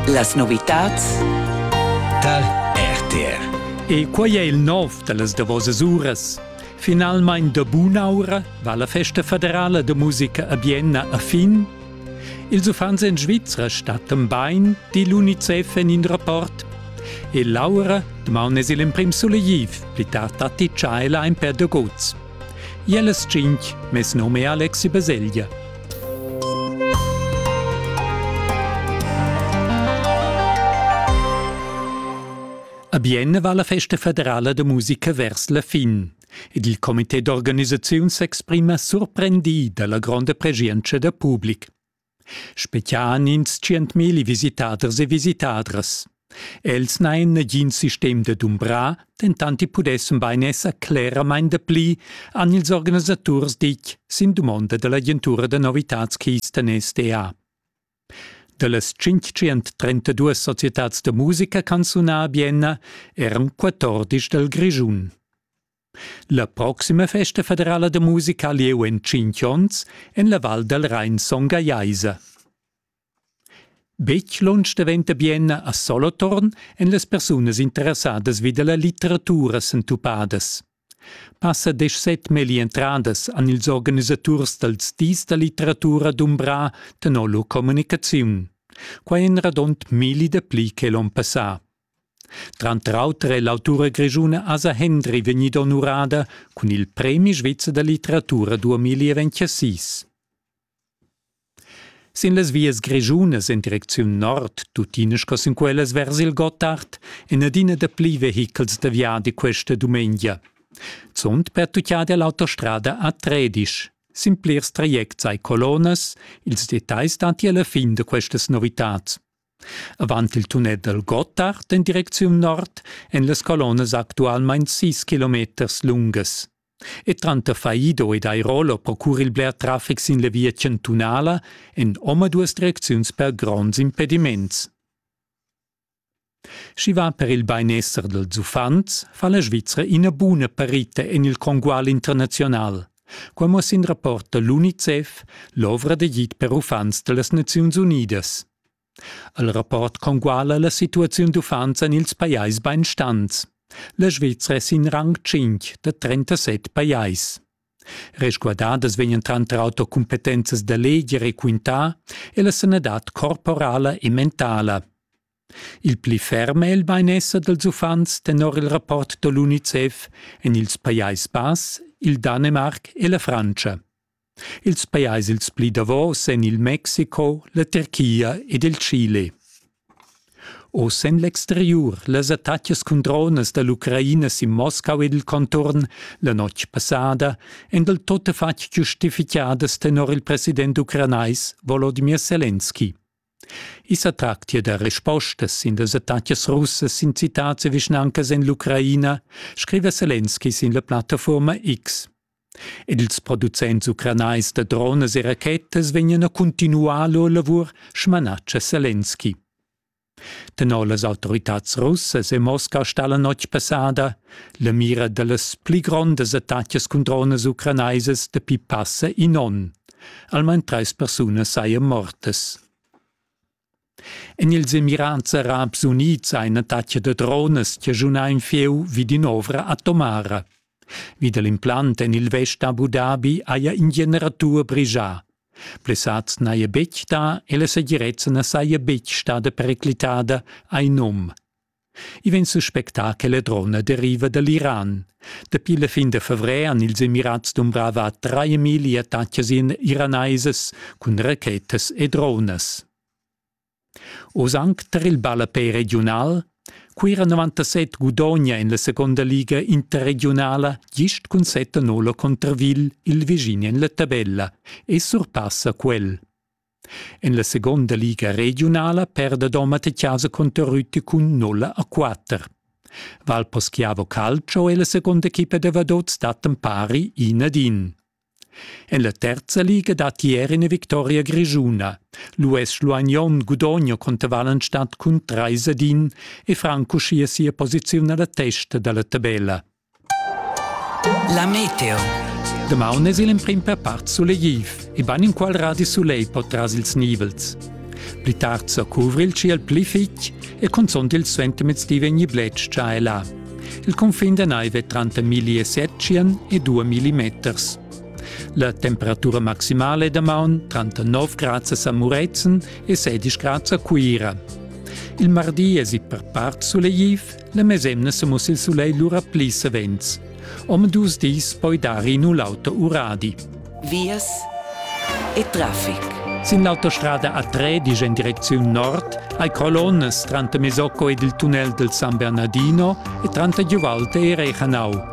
Las novitads tar RTR. E quai è il nov da las davosas uras. Finalmain da bun'aura va la festa federala da musica a Bienna a fin. Ils uffants en Svizra stattan bain, di l'UNICEF en in rapport. E Laura, damaun es il emprim sulegiv, pli tard datti tschailain per dagots. I e las tschinch. Mes num è Alexi Baselgia. A Bienne va la festa federala de musica vers la fin ed il comité d'organisaziun s'exprima surprendi dalla gronda pregientscha da public. Spetgian ins tschientmilli visitaders e visitadras. Els n'hain nagin sistem da dumbrar, dentant i pudessan bain esser cleramain dapli, han ils organisaturs ditg sin dumonda da l'agentura da novitads Keystone SDA. Da las 532 societads da musica canzunà a Bienna eran 14 dal Grischun. La proxima festa federala da musica ha lieu en tschintg onns en la Val dal Rain Son Gallaisa. Betg lunsch daventa Bienna a Solothurn en las persunas interessadas vi da la litteratura sentupadas. Passa deschset melli entradas an ils organisaturs dals dis da litteratura d'Umbra tenor lur communicaziun. Quai en radont milli da pli che l'on passà. Tranter auter è l'autura grischuna Asa Hendry vegnida onurada cun il premi svizzer da litteratura 2026. Sin las vias grischunas en direcziun nord, tuttina sco sin quellas vers il Gottard, en adina dapli vehichels da viadi questa dumengia. Zunt pertuccada è l'autostrada a Tredisch. Sin plirs trajects ai colonnas, ils detais dati alla fin da questas novitads. Avant il tunet dal Gottard en direcziun nord èn las colonnas actualmain sis kilometers lungas. E tranter Faido ed Airolo procura il bler traffic sin la via chantunala en omaduas direcziuns per gronds impediments. Sch'i va per il bainesser dals uffants, fa la Svizra ina buna parita en il congual internaziunal. Quai muossa in rapport da l'UNICEF, l'ovra d'agid per uffants da las Naziuns Unidas. El rapport conguala la situaziun d'uffants en ils pajais bainstants. La Svizra è sin rang 5 da 37 pajais. Resguardadas vegnan tranter auter cumpetenzas da leger e quintà e la sanadad corporala e mentala. Il pli ferm è il bainesser dals uffants tenor il rapport da l'UNICEF en ils Pajais Bass, il Danemarc e la Frantscha. Ils pajais ils pli davos èn il Mexico, la Tirchia ed il Chile. Oz en l'exteriur las attacas cun dronas da l'Ucraina sin Moscau ed il conturn la notg passada èn dal tuttafatg giustifitgadas tenor il president ucranais Volodimir Selenski. I sa tractia da respostas sin las attacas russas sin citads e vischnancas en l'Ucraina, scriva Selenski sin la plattafuorma X. Ed ils producents ucranais da dronas e rachetas vegnan a continuar lur lavur, smanatscha Selenski. Tenor las autoritads russas e Mosca sta la notg passada la mira da las pli grondas attacas cun dronas ucranaisas dapi passa in onn. Almain trais persunas sajan mortas. En ils emirands arabs unids ha ina tatga da dronas chaschunà in fieu vi d'in'ovra atomara. Vi da l'implant en il vest Abu Dhabi haja in generatur brigià. Blessads n'haja betg dà e la segirezza na saja betg stada periclitada, ha in um. I vegn suspectà che la drona deriva da l'Iran. Dapi la fin da favrer han ils Emirats dumbrava trais attacas iranaisas cun rachetas e dronas. Oz anc tar il ballapei regiunal Cuira 97 gudogna en la seconda liga interregiunala gist cun 7-0 contra Vil il vischin en la tabella e surpassa quel. En la seconda liga regiunala perda Domat chasa cunter Rüti cun nulla a quatter. Valposchiavo Calcio è la seconda equipa da vadots dattan pari in ad in. En la terza liga dat ieri una victoria grigiuna. L'US Luagnon gudogna contro Wallenstadt cun 3 ad 1 e Franco scia sia posizione alla testa dalla tabella. La meteo. Damaun es il emprim per part sulegtiv e bain inqual radi sulegl po tras ils nivels. Pli tard sa cuvra il ciel pli fitg e cunzunt il suentermiezdi vegni bletsch già e là. Il confin da naiv è tranter 1700 e 2000 meters. La temperatura maximale damaun tranter 9 grad a Muretzen e 16 grad a Cuira. Il mardi es i per part sulegtiv La mesemna semus il sulei lura pli savens. Om dus dis poi dari in l'auto uradi. Vias e traffic. Sin l'autostrada A3, disch in direcziun nord, hai colonnes tranter Mesocco ed il tunnel del San Bernardino e tranter Giuvalte e Rechanau.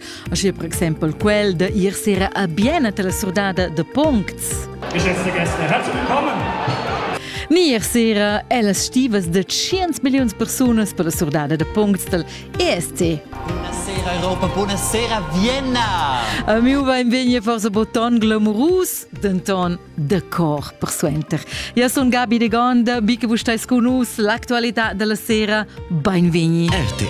Aschia per exempel quel da ir sera a Biena alla surdada de Puncts. Herzlich willkommen! Nier sera è las stivas de 100 millions persunas per la surdada de Puncts del ESC. Buonasera Europa, buonasera Vienna! A miu beinvegni forse boton glamurus, denton de cor persuenter. Ja sun Gabi de Gonda, biche vus stai cu nus, l'actualità della sera, beinvegni. RTR